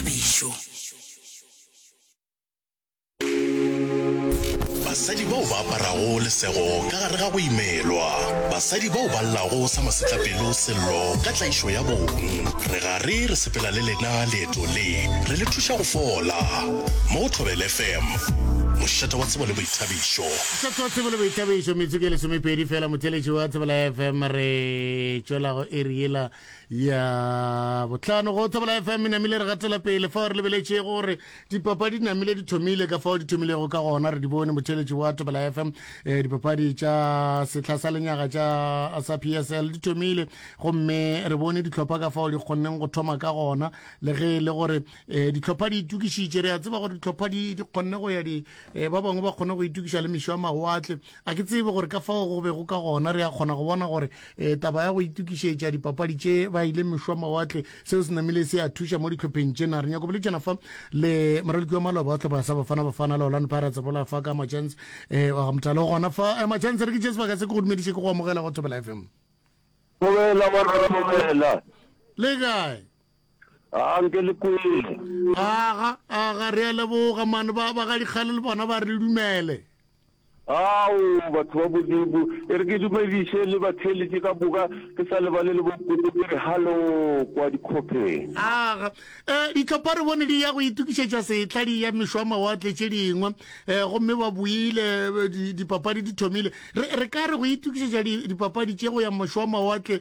phišo. Basadi bao ba aparago lesego ka gare ga go imelwa. Basadi bao ba llago sa masetlapelo Sello ka tlaišo ya bong. Re gare re sepela le lena leeto le, re le thuša go fola. Mo go Thobela FM, mošate wa tsebo le boithabišo. Mošate wa tsebo le boithabišo, metsotso e lesomepedi fela. Motheeletši wa Thobela FM re tšwela go iri yela Ya bohlano go Thobela FM e namile re gatela pele fao re lebeletše gore dipapadi di namile di thomile ka fao di thomilego ka gona re di bone motheletši wa Thobela FM eh, dipapadi tša sehla sa lenyaga tša sa PSL di thomile gomme re bone ditlhopha ka fao di kgonneng go thoma ka gona le ge e le gore eh, ditlhopha di itukišitše re a tseba gore ditlhopha di kgonne go ya di eh, ba bangwe ba kgone go itukiša le mešo a mawatle Ga ke tsebe gore ka fao go bego ka gona re a kgona go bona gore eh, taba ya go itukišetša dipapadi tše ba ile mešwa mawatle seo se namile se a thuša mo ditlhopheng tšena re nyako boletšana fa le moraloki wa maloba wa tlhopha sa bafana bafana le olano pirates bola fa ka machance eh, wa gamotalo gona fa eh, machance re ke tše sebaka se ke go dumediše ke go amogela go thobela fm Dumela morwa dumela. le kae A nke le kwele. Aga, aga, re a leboga, man. Ba, ba ga dikgale le bona ba re le dumele. Ao, batho ba Modimo, e re ke dumediše le batheeletše ka moka, ke sa lebale le bonkoko, ke re hallo kwa dikhopheng. Aga. E, dihlopha re bone di ya go itokišetša sehla, di eya mešoamawatle tše dingwe, e, gomme ba boile, di, dipapadi di thomile. Re, re ka re go itokišetša di, dipapadi tše go ya mešoamawatle,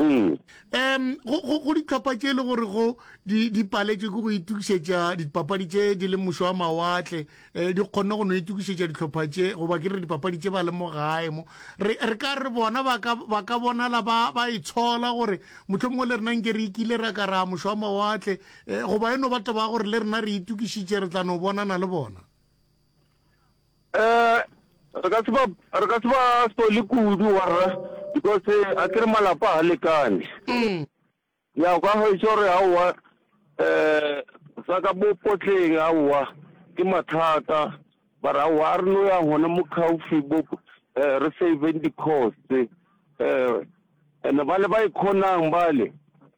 Ee. Um go ditlhopha tše e le gore go di paletše ke go itukišetša dipapadi tše di le mošo wa mawatle um di kgonne go no itukišetša ditlhopha tše goba ke re dipapadi tše ba le mo gae mo re ka re bona ba ka bonala ba ba e tshola gore motlho mongwe le rena nke re ikile ra ka ra mošo wa mawatle um goba e no ba toba gore le rena re itukišitše re tla no bonana le bona Eh, re ka se ba re ka se ba sole kudu warra because a ke re malapa ha lekane mm. ya o ka hwetša gore aowa um eh, tsa ka bopotleng aowa ke mathata bara aowa a re no ya gona mo caufi bo um eh, re saveng di-cost um eh, and-e ba le ba e kgonang bale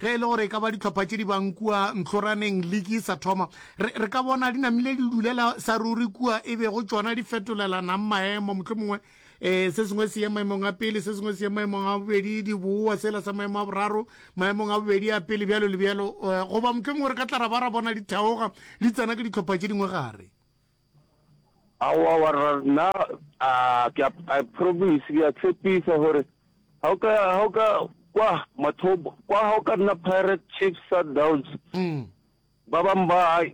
Ge e le gore e ka ba dihlopha tše di bang kua ntlhoraneng liki e sa thoma, re, re ka bona di namile di dulela sa ruri kua e bego tšona di fetolelanang maemo, mohlomongwe e, se sengwe se ye maemong a pele, se sengwe se ye maemong a bobedi, di bowa sela sa maemo a boraro, maemong a bobedi a pele, bjalo le bjalo. E, goba mohlomongwe re ka tla ra ba ra bona di theoga di tsena ke dihlopha tše dingwe gare. Aowa warra nna a ke a I promise ke a tshepisa gore ha o ka ha o ka kwa mathobo kwa ha o ka nna Pirate Chiefs Sundowns mm. ba bang ba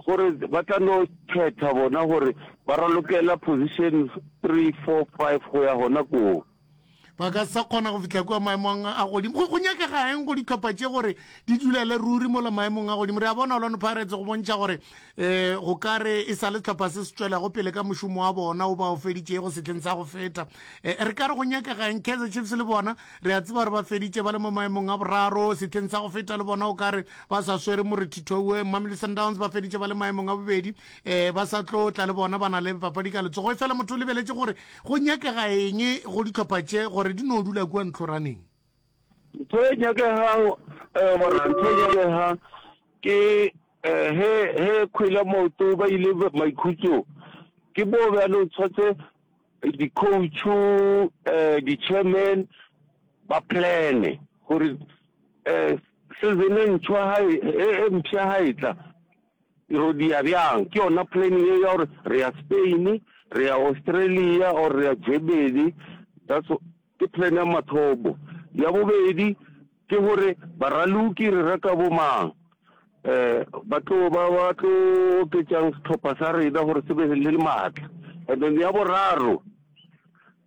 gore ba tla no khetha bona gore ba ralokela position 3 4 5 go ya gona koo ba ka sa kgona go fihla kua maemong a godimo go nyakega eng go ditlhopha tše gore di dulele ruri mola maemong a godimo re a bona olano pirates go bontšha gore um go ka re e sa le tlhopha se se tswelago pele ka mošomo wa bona o ba o feditšego setlheng sa go feta eh, re ka re go nyakega eng kaizer chiefs le bona re a tseba gore ba feditše ba le mo maemong a boraro setlheng sa go feta le bona o ka re ba sa swere morethithoue mamely sundowns ba feditše ba le maemong a bobedi um ba sa tlo tla le bona ba na le papadi ka letsogo e fela motho o lebeletše gore Go nyakega eng go dihlopha tše gore di no dula kua ntlhoraneng? Ntho e nyakegago, ee monna, ntho e nyakegang ke ge ge Kgwele Maoto ba ile maikhutsong, ke moo bjale o tshwantse di-coach-u, di-chairman ba plan-e gore season e ntšhwa ha e, e mpsha ha e tla, Ero dia bjang? Ke yona plan yeo ya gore re ya Spain, re ya Australia or re ya Germany. That's ke plan ya mathomo. Ya bobedi ke gore baraloki re reka bo mang? Um ba tlo ba ba tlo oketsang setlhopha sa rena gore se be le le maatla. And then ya boraro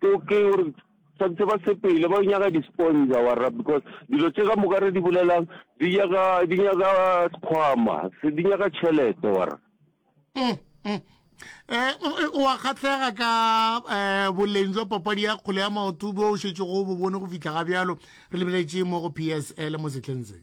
ke gore. Tshwanetse ba sepele ba nyaka di-sponsor warra because dilo tše ka moka re di bolelang di nyaka di nyaka sekgwama di nyaka tšhelete warra mm, mm. Eh, o wa kgatlhega ka eh, boleng jwa papadi ya kgole ya maoto bo o šetšego bo bone go fitlha ga bjalo re lebeletše mo go psl mo setlheng se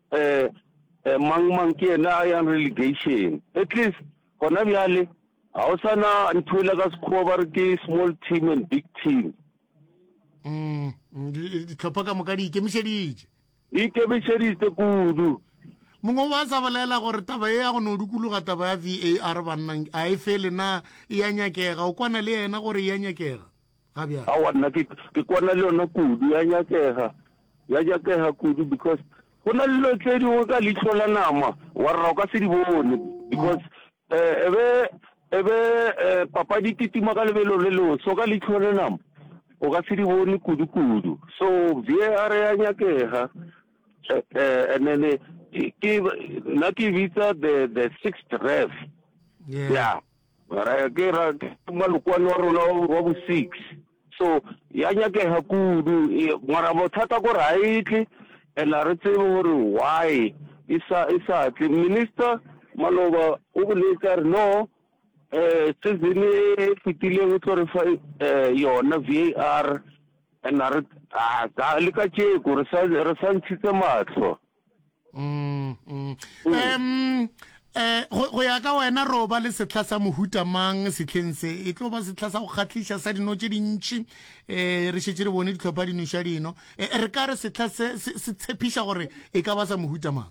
Eh, eh, mang, mang ke yena a yang relegation? At least, gona bjale, ga o sa na nthwela ka sekgowa ba re ke small team and big team. Mm, mm di- ditlhopha ka moka di ikemišeditše Di ikemišeditse kudu. mongwe wa sa bolela gore taba e ya go no dukologa taba ya var bannang a e fele na e ya nyakega o kwana le yena gore e ya nyakega ga bjale. Aowa nna ke ke kwana le yona kudu ya nyakega ya nyakega kudu because go na le dilo tse dingwe ka leihlo la nama wa rra o ka se di bone because eh e be e be eh, papadi titima ka lebelo le leo so ka leihlo la nama o ka se di bone kudu kudu so VAR ya nyakega eh, eh, and then eh, ke nna ke bitsa the the sixth ref yeah. yeah Mara ke ra malokwani wa rona wa bo six so ya nyakega kudu mara bothata gore ga e tle and a re tsebe gore why e sa e sa tle minister maloba o boletse a re no um season e fetileng o tlo re fa um yona v a r and a re a le ka tšeko re sa ntshitse matlho mm, mm. um eh go ya ka wena ro ba le setlha sa mohuta mang setlheng se e tlo ba setlha sa go kgatlhisa sa dino tse dintši um re šetse re bone ditlhopha dinoša dino eh, re ka re setlha se se tshepiša gore e ka ba sa mohuta mang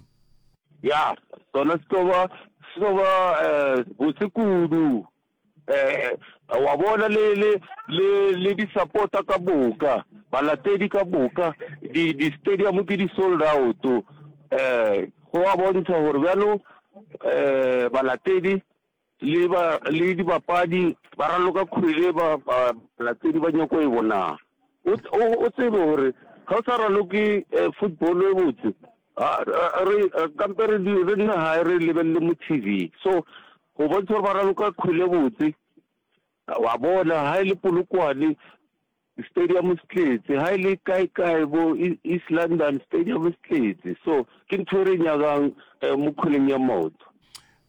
ya sona se tlo ba se tlo ba um botse kudu wa bona, le, le, le, le disapota ka moka, balatedi ka moka, di, di stadium ke di sold out. Eh, go a bontsha gore bjalo, eh, balatedi, le ba, le dibapadi, ba raloka kgwele, ba, ba, balatedi ba nyoko e bona. O, o, o tsebe gore, ga o sa raloke eh, football e botse, A, a, re, a, kampe re di, re di gae re lebelele mo TV. So, go bontšha gore ba raloka kgwele e botse. Wa bona, ha e le Polokwane, stadium se tletse. Ha e le kae kae bo E- East London, stadium se tletse. So, ke ntho e re e nyakang eh, mo kgweleng ya maoto.